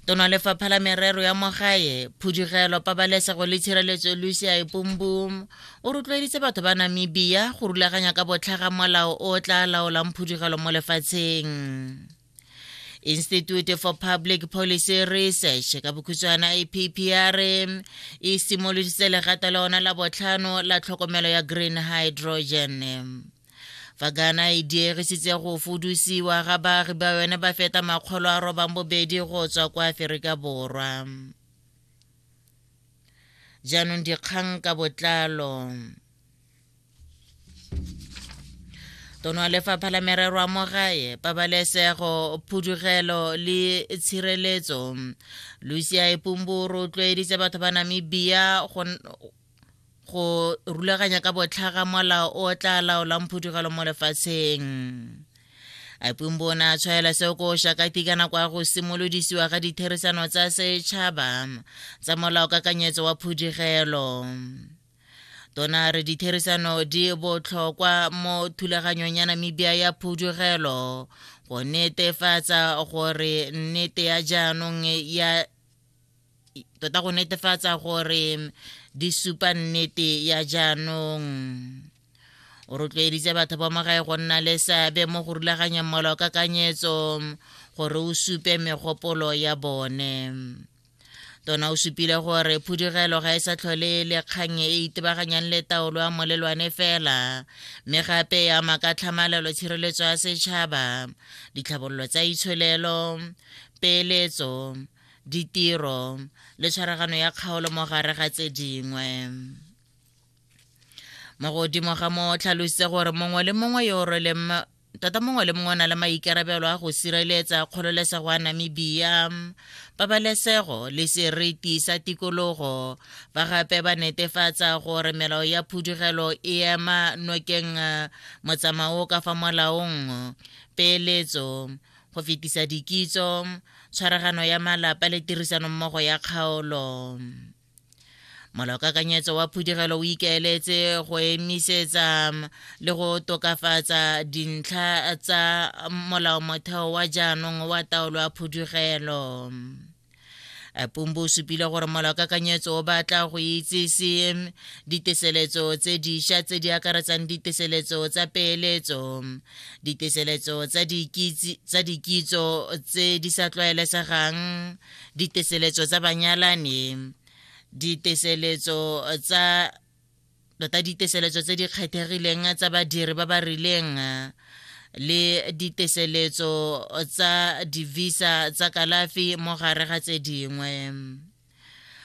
tona lefapha la merero ya mogae phudugelo pabalesego le tshireletso lucia epumbum o rotloeditse batho ba namibia go rulaganya ka botlhaga molao o tla laolang phudugelo mo lefatsheng institute for public policy research ka bokhutshwana ippr e simoloditse legato la ona la botlhano la tlhokomelo ya green hydrogen fa ghana e diegisitse go fudusiwa ga baagi ba yone ba feta makgolo a robang bobedi go tswa kwa aferika borwa jaanong dikgang ka botlalo tono wa lefapha la merero a mogae pabalesego phudugelo le tshireletso lucia epumburu o tlwaeditse batho ba namibia go rulaganya ka botlhaga molao o tla laolang phudugelo mo lefatsheng apumbo o ne a tshwaela seo ko shakati ka nako ya go simolodisiwa ga ditherisano tsa setšhaba tsa molao kakanyetso wa phudugelo tona re ditherisano di botlhokwa mo thulaganyong ya namibia ya phudugelo go netefatsa gore nnete ya jaanong ya tota go netefatsa gore di supa nnete ya jaanong o rotloeditse batho ba magae go nna le seabe mo go rulaganyeng molao ka kanyetso gore o supe megopolo ya bone tona o supile gore phudugelo ga e sa tlhole le kgang e itebaganyang le taolo ya molelwane fela mme gape e ama ka tlhamalelo tshireletso ya setšhaba ditlhabololo tsa itsholelo peeletso ditiro le tshwaragano ya kgaolo mo gare ga tse dingwe mo godimo ga mo tlhalositse gore mongwe le mongwe yo o rweleng tota mongwe le mongwe o na le maikarabelo a go sireletsa kgololesego ya namibia pabalesego le seriti sa tikologo ba gape ba netefatsa gore melao ya phudugelo e ema nokeng eh, motsamao ka fa molaong peeletso go fetisa dikitso tshwaragano ya malapa le tirisanommogo ya kgaolo molaokakanyetso wa phudigelo o ikaeletse go emisetsa le go tokafatsa dintlha tsa molaomotheo wa jaanong wa taolo ya phudigelo pumbu o supile gore molaokakanyetso o batla go itsese diteseletso tse diša tse di akaretsang diteseletso tsa peeletso diteseletso tsa dikitso tse di sa tlwaelesegang diteseletso tsa banyalani diteseletso tsa tota diteseletso tse di kgethegileng tsa badiri ba ba rileng le diteseletso tsa divisa tsa kalafi mo gare ga tse dingwe